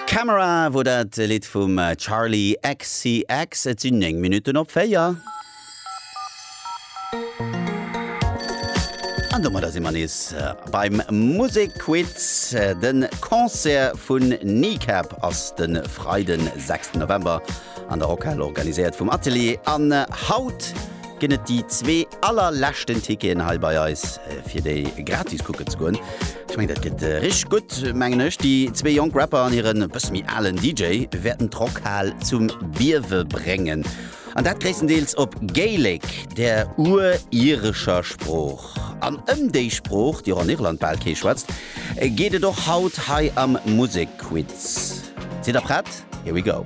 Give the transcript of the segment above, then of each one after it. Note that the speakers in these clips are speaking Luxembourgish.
Camera wor dat Lidd vum Charli XCX. Et sinn 9 Minutten op 4. An domadder si mer nees beim Musekquiz. De Concert vun Kneecap ass de Freiden, 6. November an der Rockhal organiséiert vum Atelier an Haut. ginn et déi zwee allerleschten Ticketen hei bei eis fir déi gratis kucken ze goen. Ech mengen dat gëtt richteg gutt mengen ech. Déi zwee jonk Rapper an hiren e bësse méi alen DJ wäerten d'Rockhal zum Biewe bréngen. An dat gréisstendeels op Gaelic, der urirescher Sprooch. An ëm déi Sprooch, déi och an Irland bal kee schwätzt, geet et och haut hei am Musekquiz. Sidd der prett? Here we go!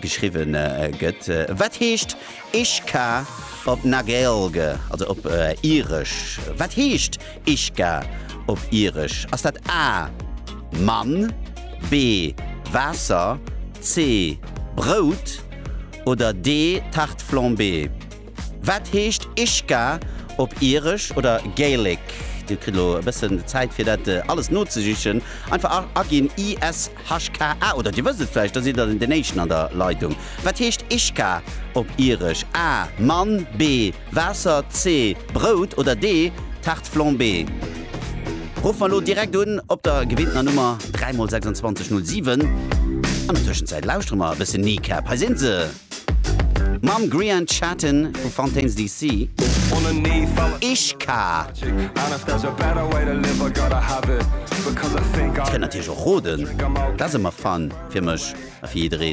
geschriwwen gëtt. Wat heescht Ishka op Nagaelge, also op Iresch? Wat heescht Ishka op Iresch? Ass dat A, Mann, B, Waasser, C, Brout oder D, Tarte flambée? Wat heescht Ishka op Iresch oder Gaelic? Dir kritt elo e bëssen Zäit, fir dat alles nozesichen. Einfach aginn IS. Hashka, ah, oder Dir wësst et vläicht, da sidd Der den Éischten an der Leitung. Wat heescht Ishka op Iresch? A, Mann, B, Waasser, C, Brout oder D, Tarte flambée? Rufft mer elo direkt un op der gewinntener Nummer 3 mol 26 07. An der Tëschenzäit lauschtere mer e bëssen Kneecap. Hei sinn se! Mam Grian Chatten vu Fontaines DC. Ich ka. Kënnt natierlech och roden, dat ass ëmmer fun fir mech a fir jiddereen.